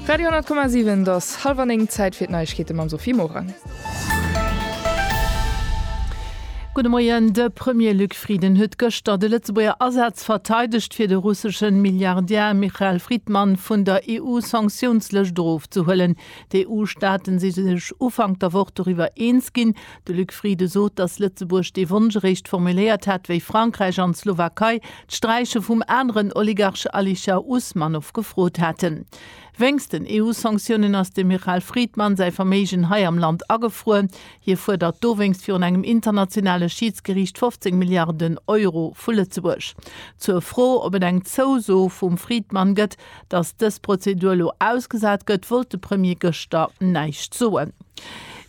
Radio 10,7 et ass hallwer 9, Zäit fir d'Neiegkeete mam Sophie Morang. Gudde Moien, De Premier Luc Frieden huet gëschter de Lëtzebuerger Asaz verteidegt, fir de russeschen Milliardär Michael Fridman vun der EU-Sanktiounslëscht erofzehuelen. D'EU-Staaten si sech Ufank der Woch doriwwer eens ginn, De Luc Frieden sot, datt Lëtzebuerg dee Wonsch eréischt formuléiert hätt, wéi Frankräich an d'Slowakei d'Sträiche vum aneren Oligarch Alisher Usmanov gefrot haten. Wéinst den EU-Sanktiounen ass dem Michal Friedman säi Verméigen hei am Land agefruer. Hie fuerdert dowéinst virun engem internationale Schiidsgeriicht 15 Milliarden Euro vu Lëtzebuerg. Zur Fro, ob et eng Zouso vum Friedman gëtt, Datt dës Prozedur elo ausgesat gëtt, wollt de Premier gëschter näischt soen.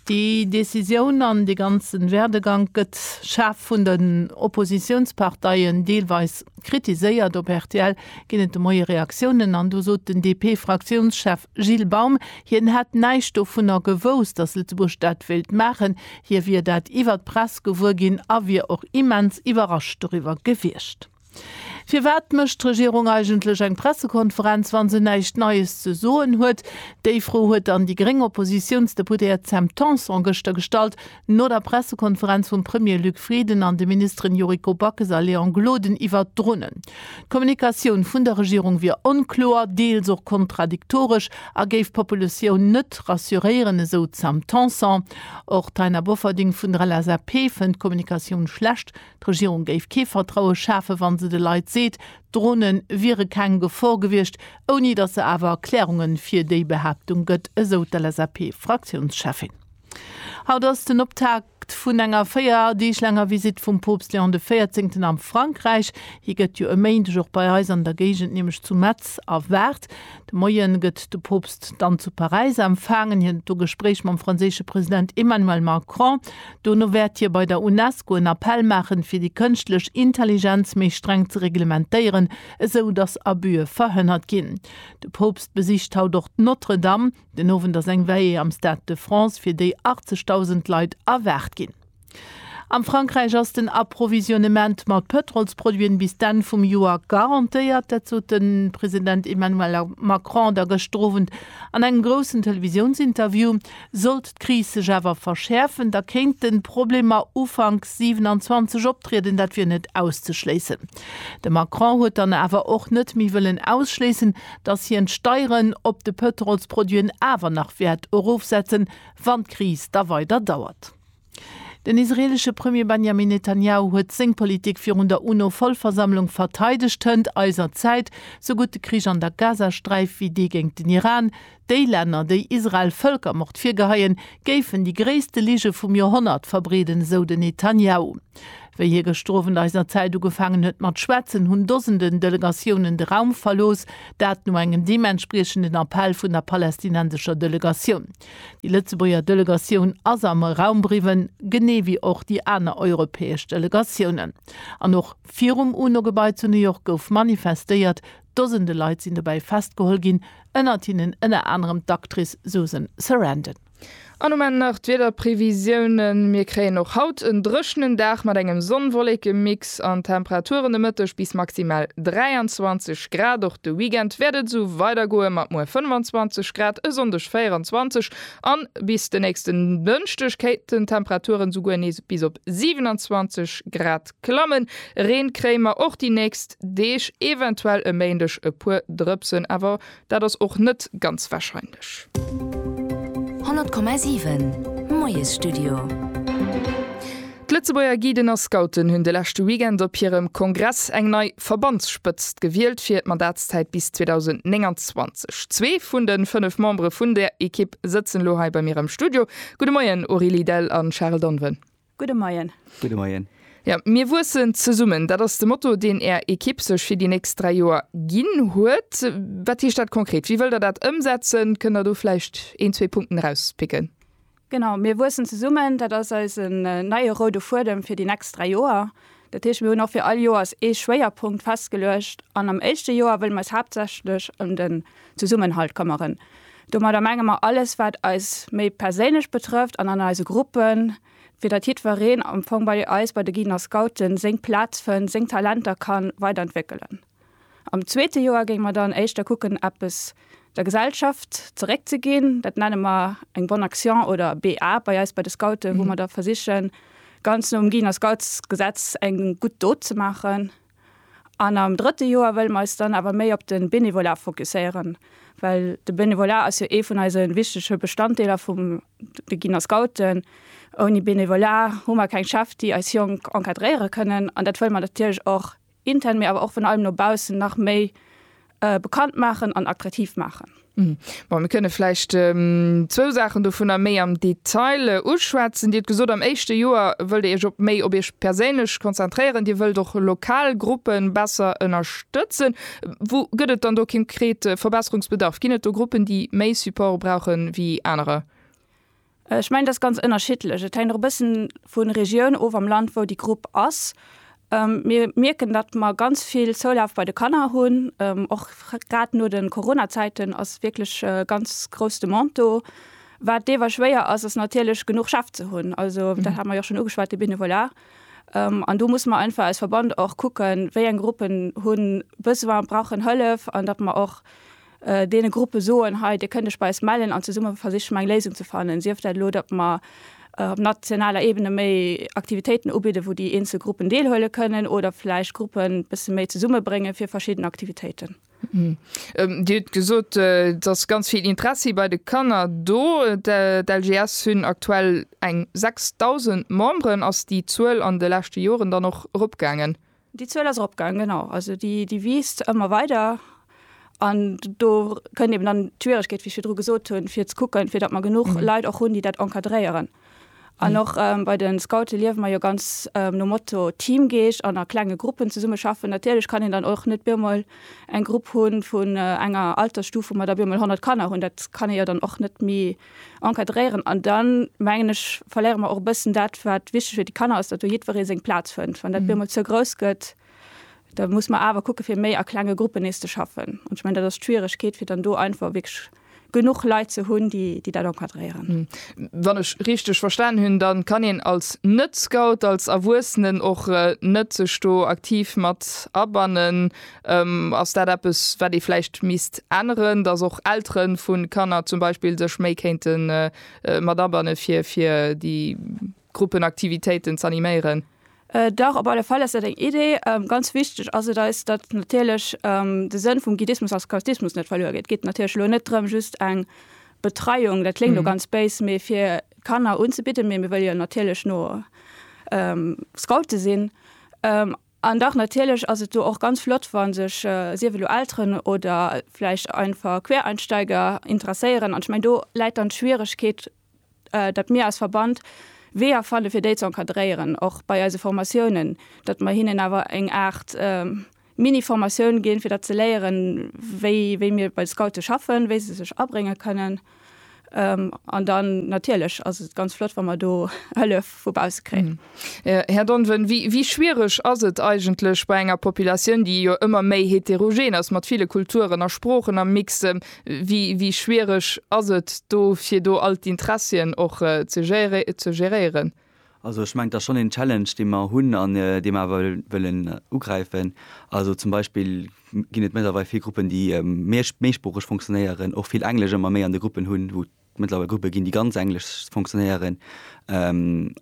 Déi Decisioun an dee ganze Werdegank gëtt schaarf vun den Oppositiounsparteien deelweis kritiséiert. Op rtl ginn et de Moie Reaktiounen an do sot den DP-Fraktiounschef Gilles Baum, hien hätt näischt dovunner gewousst, datt Lëtzebuerg dat wéilt maachen. Hie wier dat iwwer d'Press gewuer ginn a wier och immens iwwerrascht doriwwer gewiescht. Firwat mécht d'Regierung eigentlech eng Pressekonferenz, wa se näischt Neies ze soen huet? Déi Fro huet dann déi gréng Oppositiounsdeputéiert Sam Tanson gëschter gestallt, no der Pressekonferenz vum Premier Luc Frieden an de Ministeren Yuriko Backes a Léon Gloden iwwert d'Dronen. D'Kommunikatioun vun der Regierung wier onkloer, deels och kontradiktoresch a géif d'Populatioun net rassuréieren, esou d'Sam Tanson. Och d'Taina Bofferding vun der LSAP fënnt d'Kommunikatioun schlecht, D'Regierung géif kee Vertraue schafen, wa se de Leit seet, d'Drone wiere keng Gefor gewiescht, ouni datt se awer Erklärunge fir déi Behaaptung gëtt, esou d'LSAP-Fraktiounscheffin. Haut ass den Optakt vun enger véier Deeg laanger Visitt vum Poopst Léon de Véierzéngten a Frankräich. Hie gëtt jo e Méindeg och bei eis an der Géigend, nämlech zu Metz, erwaart. De Moien gëtt de Poopst dann zu Paräis empfaangen. Hien huet do Gespréich mam franséische President Emmanuel Macron. Dono wäert hie bei der Unesco en Appell maachen, fir déi kënschtlech Intelligenz méi streng ze reglementéieren, esou datt Abüe verhënnert ginn. De Poopst besicht haut och d'Notre-Dame. Den Owend ass eng Veillée am Stade de France, fir déi 80.000 Leit erwaart ginn. Am Frankräich ass den Approvisionnement mat Pëtrolsproduiten bis d'Enn vum Joer garantéiert. Dat sot de President Emmanuel Macron da gëschter Owend an engem groussen Televisiounsinterview. Sollt d'Kris sech awer verschäerfen, da kéinte Problemer Ufank 27 optrieden, dat wier net auszeschléissen. De Macron huet dann awer och net méi wëllen ausschléissen, datt hien d'Steieren op de Pëtrolsproduiten awer nach wäert erofsetzen, wann d'Kris da weider dauert. Den israelesche Premier Benjamin Netanjahu huet seng Politik virun der UNO-Vollversammlung verteidegt, Hënt eiser Zäit, sou gutt de Krich an der Gazasträif wéi dee géint den Iran, déi Länner, déi Israel Vëlkermord virgeheien, géifen déi gréisste Lige vum Joerhonnert verbreeden, esou den Netanjahu. Wéi hie gëschter Owend eiser Zäit ugefaangen huet mat schwätzen, hunn Dosenden Delegatiounen de Raum verlooss, dat no engem deementspriechenden Appell vun der palästinensescher Delegatioun. Déi Lëtzebuerger Delegatioun ass am Raum briwwen, genee wéi och déi aner europäesch Delegatiounen. An och virum UNO-Gebai zu New York gouf manifestéiert. Dosende Leit sinn dobäi festgeholl ginn, ënnert hinnen ënner anerem d'Actrice Susan Sarandon. An um Enn nach d'Wiederprevisiounen, Mir kréien och haut en dréchenen Dag mat engem Sonn-Wolleken-Mix. An d'Temperaturen de Mëtteg bis maximal 23 Grad. Och de Weekend wäert et esou weidergoe mat muer 25 Grad, e Sonndeg 24 a bis de nächsten Dënschdeg kéinten d'Temperaturen esouguer nees bis op 27 Grad klammen. Reen kréie mer och déi nächst Deeg, eventuell e Méindeg e puer Drëpsen, awer Dat ass och net ganz wahrscheinlech. 100,7 Moiesstudio. D'Lëtzebuerger Guiden a Scouten hunn de leschte Weekend op hirem Kongress eng nei Verbandsspëtzt gewielt fir d'Mandatszäit bis 2029. Zwee vun de fënnef Membere vun där Ekipp sëtzen elo hei bei mir am Studio. Gudde Moien Aurélie Dell an Charel Donwen. Gudde Moien. Gudde Moien. Jo, mir wuessen zesummen, dat ass de Motto, deen Är Ekipp sech fir déi nächst dräi Joer ginn huet. Wat heescht dat konkret? Wéi wëllt Der dat ëmsetzen? Kënnt Der do vläicht een, zwee Punkten erauspicken? Genau, mir wuessen zesummen, dat ass eisen neie roude Fuedem fir déi nächst dräi Joer. Dat heescht, mir hunn och fir all Joers ee Schwéierpunkt festgeluecht an am éischte Joer wëlle mer eis haaptsächlech ëm den Zesummenhalt këmmeren. Domadder menge mer alles, wat eis méi perséinlech betrëfft an an eise Gruppen, fir datt jiddwereen am Fong bei eis, bei de Guiden a Scouten, seng Plaz fënnt, seng Talenter ka weiderentwéckelen. Am zweete Joer géing mer dann éischter kucken eppes der Gesellschaft zeréck ze ginn. Dat nenne mer eng Bonne Action oder BA bei eis bei de Scouten, wou mer da versichen ganz no um Giner Scouts Gesetz eng gutt Dot ze maachen. An am drëtte Joer wëlle mer eis dann awer méi op de Benevolat fokusséieren, well de Benevolat ass jo ee vun eise wichtege Bestanddeeler vum de Giner Scouten. Ouni Benevolat hu mer keng Chef déi eis Jonk encadréiere kënnen an dat wëlle mer natierlech och intern, mee awer och virun allem no baussen nach méi bekannt maachen an attraktiv maachen. Bon, mir kënne vläicht zwou Saachen dovunner méi am Detail uschwätzen. Dir hutt gesot, am éischte Joer wëllt Dir Iech op méi op Iech perséinlech konzentréieren. Dir wëllt och lokal Gruppe besser ënnerstëtzen. Wou gëtt et dann do konkret Verbesserungsbedarf? Ginn et do Gruppen, déi méi Support brauchen ewéi anerer? Ech mengen, dat ass ganz ënnerschiddlech. Et hänkt och e bëssen vu Regioun of am Land, wou déi Grupp ass. Mir mierken, datt mer ganz vill Zoulaf bei de Kanner hunn. Och grad no de Corona-Zäiten ass wierklech e ganz grouss Demande do. Wat deewer schwéier ass, ass natierlech genuch Chef ze hunn. Also dat hat mer jo och schonn ugeschwat, de Benevolat. An do musse mer einfach als Verband och kucken, wéi eng Gruppen hu Besoin, brauchen Hëllef an datt mer och, deene Gruppe soen, hei, dir kënnt iech bei eis mellen an zesumme versiche mer eng Léisung ze fannen, sief dat elo, datt mer op nationaler Ebene méi Aktivitéiten ubidde wou déi eenzel Gruppen deelhuele kënnen oder vläicht Gruppen e bësse méi zesummebrénge fir verschidden Aktivitéiten. Dir hutt gesot, et ass ganz vill Interessi bei de Kanner do. D'LGS hunn aktuell eng 6.000 Memberen. Ass déi Zuel an de leschte Joren dann och eropgaangen? Déi Zuel ass eropgaangen, genau. Also déi wiisst ëmmer weider. An do kënnt eben dann d'Schwieregkeet, wéi ech virdru gesot hunn, fir ze kucken, fir datt mer genuch Leit och hunn, déi dat encadréieren. An och bei de Scoute liewe mer jo ganz nom Motto Teamgeescht an a klenge Gruppen zesummeschaffen. Natierlech kann een dann och net op eemol eng Grupp hu vun enger Altersstuf, wou mer da op eemol 100 Kanner hunn. Dat kann ee jo dann och net méi encadréieren an dann mengen ech verléiere mer och e bëssen dat wat wichteg fir déi Kanner ass, datt do jiddweree seng Plaz fënnt. Wann dat bemol ze grouss gëtt, da muss mer awer kucke fir méi a klenge Gruppen nees ze schaffen. An ech mengen dat ass d'Schwieregkeet fir dann do einfach wierklech genuch Leit ze hunn, déi déi dat encadréieren. Wann ech richteg verstanen hunn, da kann een als Net-Scout, als Erwuessenen och net sech do aktiv mat abannen. Ass dat eppes, wat ee vläicht misst änneren, dass och Eltere vu Kanner zum Beispill sech méi kéinte mat abanne fir déi Gruppenaktivitéiten z'animéieren? Dach, op alle Fall ass dat eng Idee. Ganz wichteg ass et eis, datt natierlech de Sënn vum Guidismus a Scoutismus net verluer geet. Et geet natierlech elo net drëm, just eng Betreiung, dat kléngt elo ganz béis, mee fir d'Kanner unzebidden, mee mir wëlle jo natierlech no Scoute sinn. An dach, natierlech ass et do och ganz flott, wa sech, sief elo Elteren oder vläicht einfach Quereinsteiger interesséieren. An ech mengen, do läit dann d'Schwieregkeet, datt mir als Verband Weeër fanne fir déi ze encadréieren, och bei eise Formatiounen, datt mer hinnen awer eng Aart Mini-Formatioun ginn, fir dat ze léieren, wéi mir bei de Scoute schaffen, wéi se sech abrénge kënnen. Ähm, an dann natierlech ass et ganz flott, wa mer do Hëllef vu bausse kréien. Mhm. Äh, Här Donven, wéi, wéi schwiereg ass et eigentlech bei enger Populatioun, déi jo ëmmer méi heterogen ass, mat ville Kulturen a Sproochen am Mix, ähm, wéi, wéi schwiereg ass et do, fir do all d'Interessien och äh, ze géréieren? Also ech mengen, et ass schonn een Challenge, dee mer hunn an dee mer awer wëllen ugräifen. Also zum Beispill ginn et mëttlerweil vill Gruppen, déi méi méisproocheg fonctionnéieren, och vill Englesch ëmmer méi an de Gruppen hunn, wou et mëttlerweil Gruppe ginn, déi ganz englesch fonctionnéieren.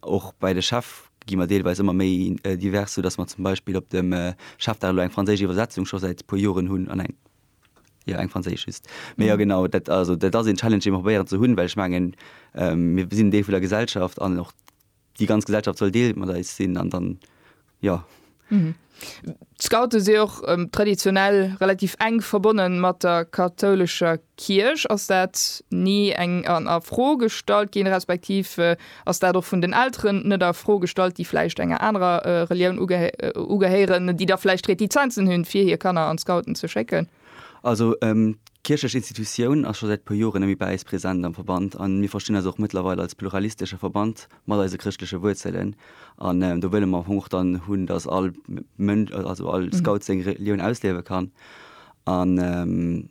Och bei de Chef gi mer deelweis ëmmer méi divers, soudass mer zum Beispill op dem Chefdag elo eng franséisch Iwwersetzung scho säit e puer Joren hunn an eng Jo, eng franséisch just. Mee jo genau, dat, also, dat ass een Challenge, dee mer probéieren ze hunn, well ech mengen, mir sinn en Deel vun der Gesellschaft an och déi ganz Gesellschaft soll Deel mat eis sinn an dann, jo. D'Scoute si och traditionell relativ enk verbonne mat der kathoulescher Kierch. Ass dat ni eng a Fro gestallt ginn, respektiv Ass dat och vun den Elteren net a Fro gestallt, déi vläicht enger anerer Relioun ugehéieren, déi da vläicht Retizenzen hunn, fir hir Kanner an d'Scouten ze schécken? Also, d'kierchlech Institutioun ass scho säit e puer Joren net méi bei eis present am Verband an mir verstinn eis och mëttlerweil als pluralistesche Verband mat eise chrëschtleche Wuerzelen. An do wëlle mer am Fong och dann hunn, dass all Mënsch, also all Scout seng Relioun ausliewe kann an,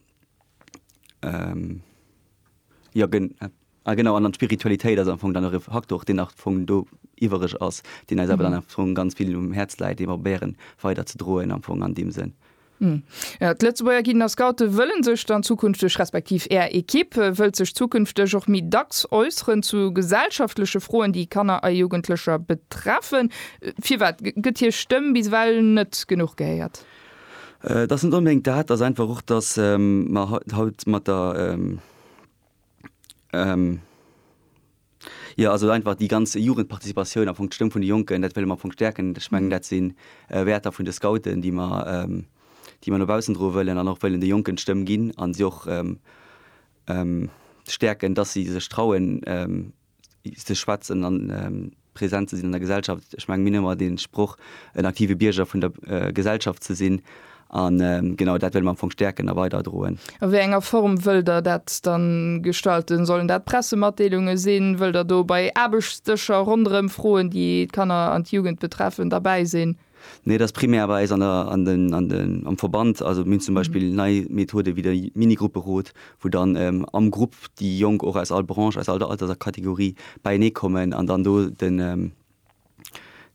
jo, gen. Ah genau, an d'Spiritualitéit ass am Fong dann och e Faktor, deen am Fong do iwwereg ass, deen eis awer dann am Fong ganz vill um Häerz läit, dee mer probéieren weider ze droen am Fong an deem Sënn. Jo, d'Lëtzebuerger Guiden a Scoute wëlle sech dann zukünfteg, respektiv Är Ekipp wëllt sech zukünfteg och méi dacks äusseren zu gesellschaftleche Froen, déi Kanner a Jugendlecher betreffen. Firwat gëtt hir Stëmm bis ewell net genuch gehéiert? Et ass net onbedéngt dat, et ass einfach och, datt mer haut mat der. Jo, also einfach déi ganz Jugendparticipatioun, am Fong d'Stëmm vun de Jonken, dat wëlle mer am Fong stäerken. Ech mengen, dat si Wäerter vun de Scouten, déi mer, déi mer no baussen droe wëllen an och wëllen de Jonken d'Stëmm ginn a si och stäerken, dass si sech trauen, ze schwätzen an present ze sinn an der Gesellschaft. Ech menge mir hunn ëmmer dee Sproch, en aktive Bierger vun der Gesellschaft ze sinn. An genau dat wëlle mir am Fong stäerken a weiderdroen. A wéi enger Form wëllt Der dat da gestalten? Sollen dat Pressematdeelunge sinn? Wëllt Der do bei Aarbechtsdëscher ronderëm Froen, déi d'Kanner an d'Jugend betreffen, derbäi sinn? Nee, et ass primär bei eis an der, an den, an den, am Verband. Also mir hunn zum Beispill nei Methode wéi de Mini-Grupperot, wou dann ähm, am Grupp déi Jonk och aus all Branche, aus all der Alterskategorie beienee kommen an dann do den, ähm,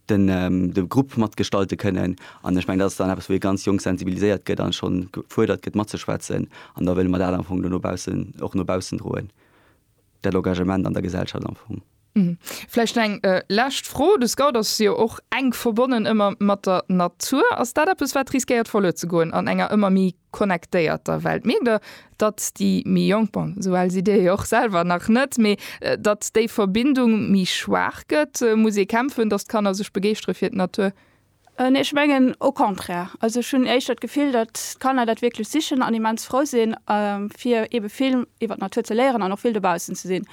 den, ähm, de Grupp matgestalte kënnen. An ech mengen, dat ass dann eppes, wou ee ganz jonk sensibiliséiert gëtt an schonn gefuerdert gëtt matzeschwätzen. An da wëlle mer dat am Fong do no baussen, och no baussen droen. dat Engagement an der Gesellschaft am Fong. Vläicht eng lescht Fro, de Scout ass jo och enk verbonnen ëmmer mat der Natur. Ass dat eppes, wat riskéiert verluer ze goen an enger ëmmer méi connectéierter Welt? Mierkt Der, datt déi méi Jonk, bon esou al sidd Dir jo och selwer nach net, mee datt déi Verbindung méi schwaach gëtt? Muss ee kämpfen, datt d'Kanner sech begeeschtere fir d'Natur? Nee, ech mengen au contraire. Also ech hunn éischter d'Gefill, datt d'Kanner dat wierklech sichen an immens frou si fir ebe vill iwwer d'Natur ze léieren an och vill dobaussen ze sinn.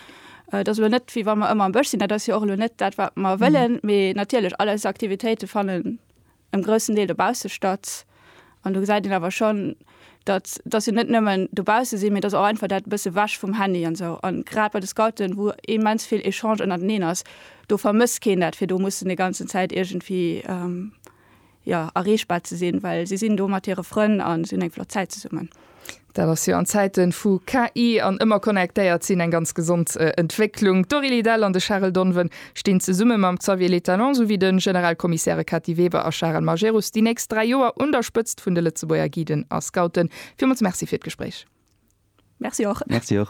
Et ass elo net, wéi wa mer ëmmer am Bësch sinn, dat ass jo och elo net dat wat mer wëllen, mee natierlech all eis Aktivitéite fannen em groussen Deel dobausse statt. An do gesäit een awer schonn, datt datt se net nëmmen dobausse sinn, mee datt och einfach dat e bësse wech vum Handy an esou. An grad bei de Scouten, wou immens vill Echange ënnerteneen ass, do vermësst keen dat, fir do mussen déi ganzen Zäit iergendwéi, jo, erreechbar ze sinn, well si sinn do mat hire Frënn a si hunn eng flott Zäit zesummen. Dat ass jo an Zäiten vu KI an ëmmer connectéiert sinn eng ganz gesond Entwécklung. D'Dori Lidell an de Charel Donven stinn zesumme mam Xavier Le Talon souwéi de Generalkommissairen Kati Weber a Charel Majerus déi nächst 3 Joer un der Spëtzt vun de Lëtzebuerger Guiden a Scouten. Villmools Merci fir d'Gespréich. Merci och. Merci och.